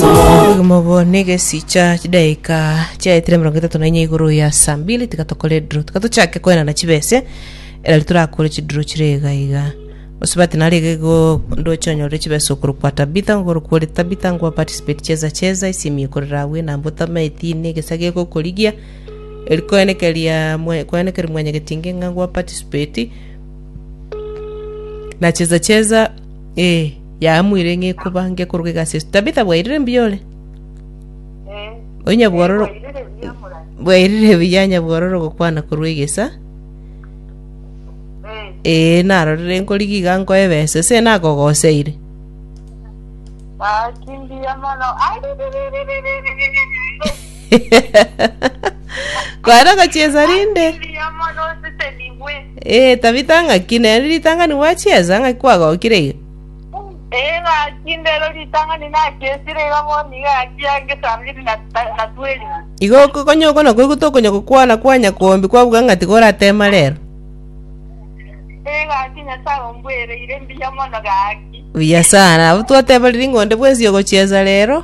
Obogima obo negesicha chidaika chiaetire emerongo etato na inya igoro ya saa mbili tiga tokore edro tiga tochake koenana chibese erari torakore chidro chire iga iga osubati nare iga igo ndoche onyorere chibesa okoro kwa tabitha ngoro kwore tabitha ngwa participate cheza cheza esimi ekorera abwo enamba otame etini egesa gegokorigia eri koenekeria mwe- koenekeria mwenyegetinge ng'a ngwa participate nacheza cheza Ee, yaamwire ng'ekuba ngekorwa egasi Yesu. Tabitha bwairire mbuya ore? Eh, Onya bwororo bwairire buya morai. bwairire buya nyabwororo gokwana korwa egesa. Eh, Ee, narorire nkorigia iga nkoe ebesa ase nakogoseire. ah, kimbuya mono. Aririririririririri. Kware gochiesa rinde. Asiliamo nosisenigwe. Eh, Tabita ng'aki nere ritangani gwachiesa ng'aki kwagokire iga. Ee gaki ndero ritang'ani nachesire iga bono iga gaki yange saa mbiri na ta- na tweri. Igo okokonya oko nako igo tokonya gokwana kwa nyakombi kwabuga ng'ati goratema rero. Ee gaki Nyasaye ombwereire mbuya mono gaki. Buya sana. Abwo twateberiri ng'onde bwensi ogochiesa rero.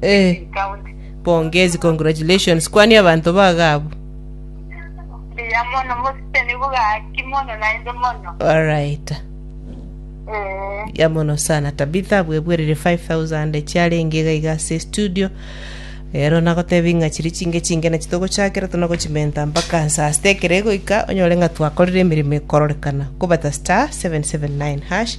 Eh, pongezi, congratulations. Kwania abanto baga abwo. Mbuya mono mositeni bugaki mono naende mono. Alright. Eh, ya mono sana tabitha abwebwerire 5000 echiarenge iga iga ase studio ero nagotebi ng'a chiri chinge chinge nachi togochakera tonagochimenta mpaka nsaa sita ekero egoika onyore ng'a twakorire emeremo ekororekana kobata star 779 hash